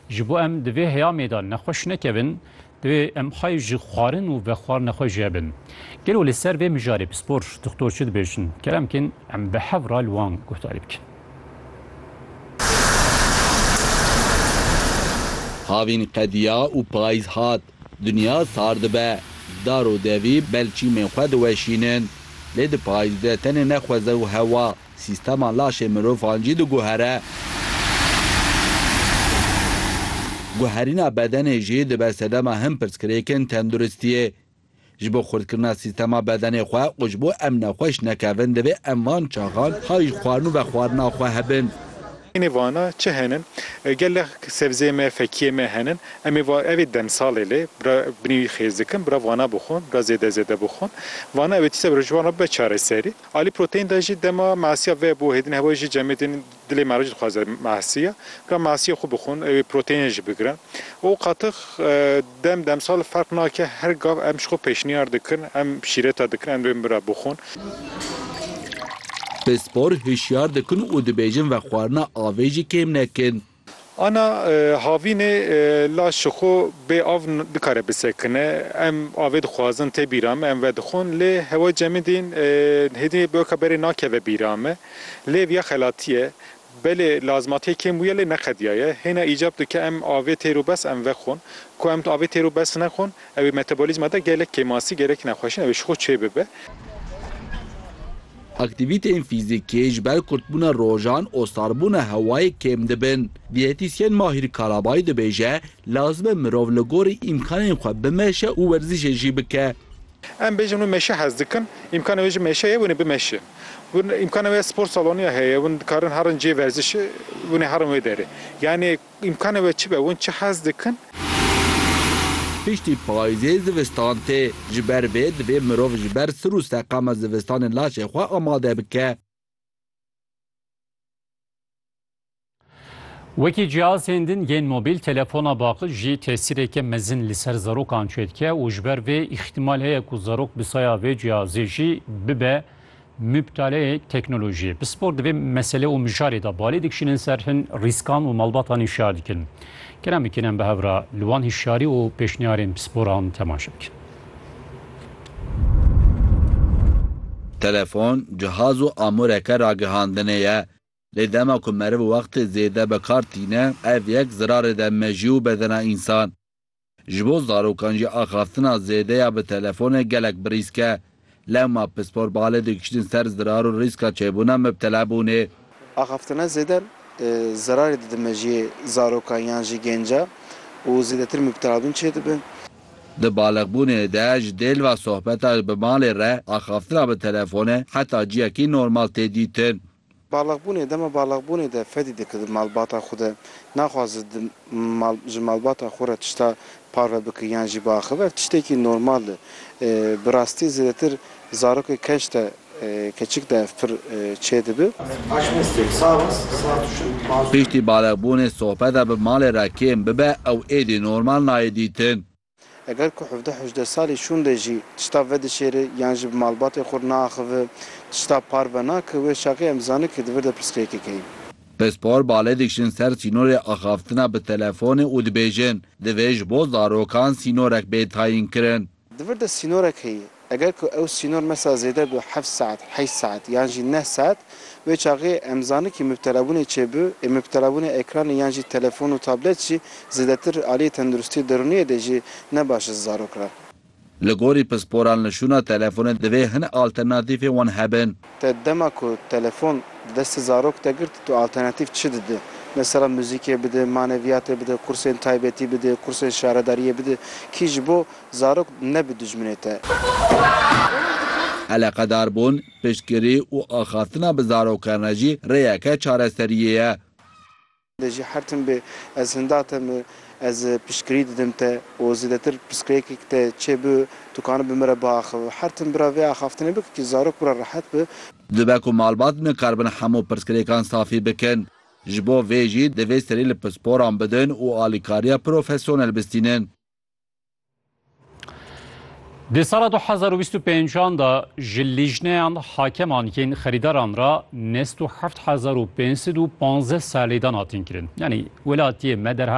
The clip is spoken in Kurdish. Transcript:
Ji bo em di vê heyamê de nexweş nekevin, divê em xwe ji xwarin û vexwarine xwe jêbin. Gelo li ser vê mijarê pispor, doxtor çi dibêjin? Kerem bkin em bi hev re li wan guhdarî bikin. Havîn qediya û payîz hat. Dinya sar dibe, dar û devî bel çîmên xwe diweşînin. Lê di payîz de tenê ne xweze û hewa, sîstema laşê mirovan jî diguhere. Guherîna bedenê jî dibe sedema hin pirsgirêkên tenduristiyê. Ji bo xurtkirina sîstema bedenê xwe û ji bo em nexweş nekevin divê em van çaxan hay ji xwarin û vexwarina xwe hebin. Nê vana çi hene? Gelek sebzê me, fekiyê me hene. Em ê va ev ê demsalê lê bira binê wî xêz dikin, bira vana bixwin, bira zêde zêde bixwin. Vana ew ê tişta bira ji wan re bibe çareserî. Alî proteîn de jî dema masiya ve bo hêdin hewa jî cemê tên. Dilê meric dixwaze masiya, ka masiya xwe bixwin, ew ê proteînê jî bigirin û qatix dem demsal ferq nake, her gav em ji xwe pêşniyar dikin, em şîreta dikin, em rê bira bixwin. Pispor hişyar dikin û dibêjin vexwarina avê jî kêm nekin. Ana havînê laş ji xwe bê av nikare bisekine. Em avê dixwazin tê bîra me, em vedixwin lê hewa cemidîn hêdî bi weke berê nakeve bîra me. Lê vîya xelatî ye. Belê lazmatiyê kêm bûye lê neqediya ye. Hêna îcab dike em avê têro bes em vexwin. Ku em avê têro bes nexwin ewê metabolîzma de gelek kêmasî, gelek nexweşîn ewê ji xwe çêbibe. Aktîvîteyên fîzîkî ji ber kurtbûna rojan û sarbûna hewayê kêm dibin. Dîyetîsyen Mahîr Karabayî dibêje, Lazim e mirov li gorî îmkanên xwe bimeşe û werzîşê jî bike. Em bêjin wê meşe hez dikin, îmkana wê jî meşe ye, wêne bimeşin. Win îmkana wê ye spor saloniya heye, win dikarin herin cihê werzişê, wêne herin wê derê. Yanê. Îmkanê we çi be? Hûn çi hez dikin? Piştî payizê zivistan tê. Ji ber vê divê mirov ji ber sir û seqama zivistanê laşê xwe amade bike. Wekî cihazên din yên mobîl, telefona baqil jî tesîreke mezin li ser zarokan çêdike û ji ber vê îxtîmal heye ku zarok bi saya vê cihazê jî bibe Muptaleyê teknolojiyê pispor di vê mesele û mijarê de balê dikişînin ser hin rîskan û malbatan hişyar dikin. Kerem bikin em bi hev re li wan hişyarî û pêşniyarên pisporan temaşe bikin. Telefon, cihaz û amûreke ragihandinê ye. Lê dema ku meriv wextê zêde bi kar tîne, ev yek zirarê de mejî û bedena însan. Ji bo zarokan jî axaftina zêde ya bi telefonê gelek bi rîsk e. Lewma pispor balê digihîştin ser zirar û rîska çêbûna mibtelebûnê. Axaftina zêde zerarê dide mejiyê zarokan yan jî gêncan û zêdetir mibtelabûn çêdibin. Di baliqbûnê de ji dêlva sohbeta bi malê re axaftina bi telefonê heta ciyekî normal tê dîtin. Baliqbûnê, dema baliqbûnê de fedî dike di malbata xwe de, naxwaze di mal ji malbata xwe re tişta parve bike yan jî biaxive, ev tiştekî normal e. Bi rastî zêdetir zarokê keç de, keçik de ev pir çê dibe. Piştî baliqbûnê sohbeta bi malê re kêm bibe ew êdî normal nayê dîtin. Eger ku hevdeh hejdeh salî şûnde jî tişta vedişêri yan jî bi malbatê xwe re naaxivi, tişta par venake, wê şaxê em dizane ke di vir de pirsgirêkê keye. Pispor bale dikişin ser sînorê axaftina bi telefonê û dibêjin, divê ji bo zarokan sînorek bê tayînkirin. Di vir de sînorek heye, Eger ku ew sînor mesa zêde bi heft saet, heşt saet yan jî neh saet, wê çaxê em zanin kî mubtelabûnê çê bi, ê mubtelabûnê ekranê yan jî telefon û tablet jî zêdetir aliyê tenduristiyê derûniyê de jî ne baş e ji zarok re. Li gorî pisporan li şûna telefonê divê hin alternatîfên wan hebin. Te dema ku telefon di destê zarok de girt tu alternatîf çi didî? Mesela muzîkê bidî, maneviyatê bidî, kursên taybetî bidî, kursên şaredariyê bidî kî ji bo Zarok ne bi dijminê te. Eleqedarbûn, piştgirî û axaftina bi zarokane jî rêyeke çareseriyê ye. De jî her tim bê ez hinda te mi, ez piştgirî didim te û zêdetir pirsgirêkek te çê bi, tu kanî bi min re biaxivi. Her tim bira vê axaftinê bike kî zarok bira rehet bi. Dibe ku malbat nikaribin hemû pirsgirêkan safî bikin. Ji bo vê jî divê serî li pisporan bidin û alîkariya profesyonel bistînin. Di sala 2025 da ji lîjneyan hakeman yên xerîdaran ra nest û heft hezar û pêncsid û panzdeh serlêdan hatin kirin. Yanî welatiyê me derheq